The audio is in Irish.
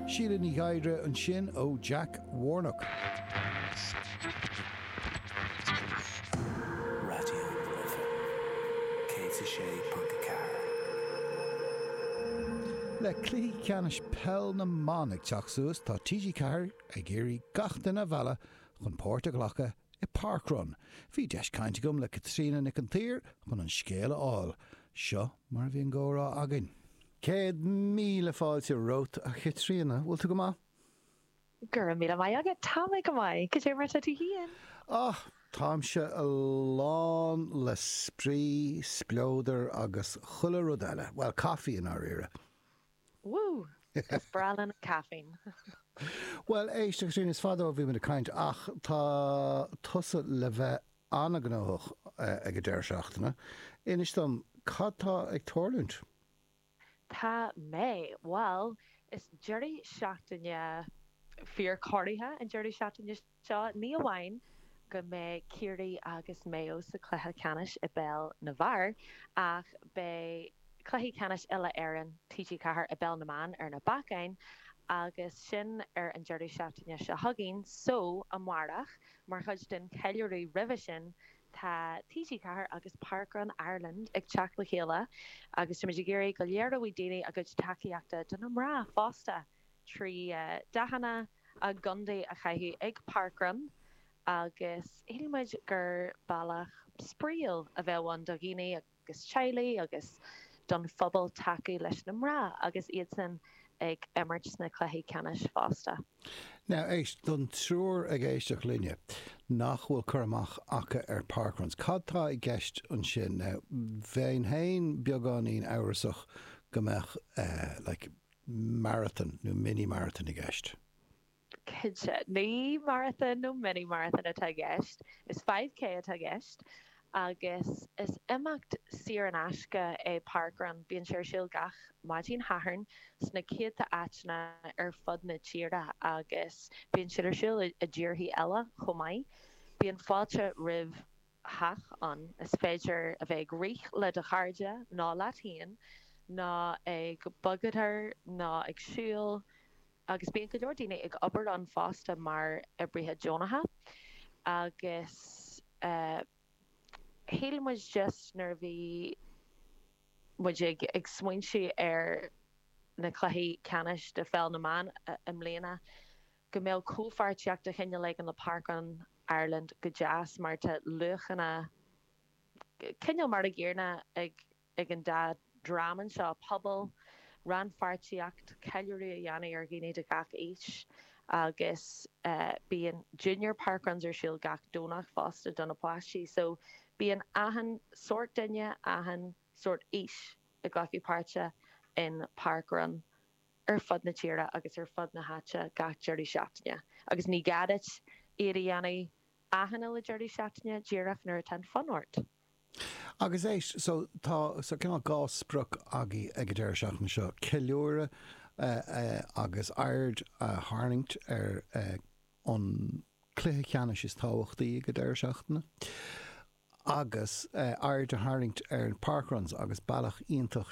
Síle Ní Ghadhra ansin ó Jack Warnock. Raidió na Life 106.4. Le cluichí ceannais Peil na mBan ag teacht suas, tá TG4 ag iarraidh gach duine a mhealladh chun páirt a ghlacadh i parkrun. Bhí deis cainte agam le Caitríona Nic an tSaoir chun an scéal a fháil. Seo mar a bhí an comhrá againn. Céad míle fáilte romhat, a Chaitríona. Bhfuil tú go maith? Go raibh míle maith agat. Tá mé go maith. Cad é mar atá tú féin? Á, táimse lán le spraoi, spleodar agus chuile rud eile. Bhuel, caife i ndáiríre. Woo! Is breá liom an caiféine. Bhuel, éist, agus sin, is fada ó bhí muid ag caint, ach tá tusa le bheith an-ghnóthach ag an deireadh seachtaine. Inis dom, cad tá ag tarlúint? Tá mé. Bhuel, is deireadh seachtaine fíor-chorraithe an deireadh seachtaine seo. seo. Ní amháin go mbeidh Ciarraí agus Maigh Eo sa chluiche ceannais i bpeil na bhfear ach beidh cluichí ceannais uile-Éireann TG4 i bpeil na mban ar na bacáin agus sin ar an deireadh seachtaine seo chugainn so amárach mar chuid den cheiliúradh roimhe sin tá TG4 agus Parkrun Ireland ag teacht le chéile agus táimid ag iarraidh go léireoidh daoine a gcuid tacaíochta do na mná fosta. trí dathanna a gcontae a chaitheamh ag parkrun agus shíl muid gur bealach spraíúil a bheadh ann do dhaoine agus teaghlaigh agus don phobal tacú leis na mná agus iadsan ag imirt sna cluichí ceannais fosta. Now, éist, don triúr ag éisteacht linne nach bhfuil cur amach acu ar parkruns, cad tá i gceist ansin? Now, bheinn féin beagáinín amhrasach go mbeadh, like, marathon nó mini marathon i gceist? Cinnte. Ní marathon nó mini marathon atá i gceist. Is five K atá i gceist. Agus is imeacht saor in aisce é parkrun. Bíonn sé ar siúl gach maidin Shathairn sna céadta áiteanna ar fud na tíre agus bíonn siad ar siúl i dtíorthaí eile chomh maith. Bíonn fáilte roimh. chách ann is féidir a bheith ag rith le do chairde ná leat féin ná ag bogshodar ná ag siúl agus bíonn go leor daoine ag obair ann fosta mar oibrithe deonacha agus shíl muid just nuair a bhí muid ag smaointiú ar na cluichí ceannais do Pheil na mBan i mbliana Go mbeadh comhpháirtíocht de chineál éigin le Parkrun Ireland go deas mar tá luachanna cineál mar a gcéanna ag ag an dá dhream anseo, pobal, rannpháirtíocht, ceiliúradh a dhéanamh ar dhaoine de gach aois agus bíonn junior parkruns ar siúl gach Domhnach fosta do na páistí. So bíonn achan sórt duine, achan sórt aois ag glacadh páirte in Parkrun. ar fud na tíre agus ar fud na háite gach deireadh seachtaine. Agus ní gá duit iad a dhéanamh achan aon deireadh seachtaine díreach nuair atá an fonn ort. Agus so tá so cineál dhá sprioc againn ag an deireadh seachtaine seo, ceiliúradh agus aird a tharraingt ar an cluiche ceannais is tábhachtaí ag an deireadh seachtaine agus aird a tharraingt ar parkruns agus bealach iontach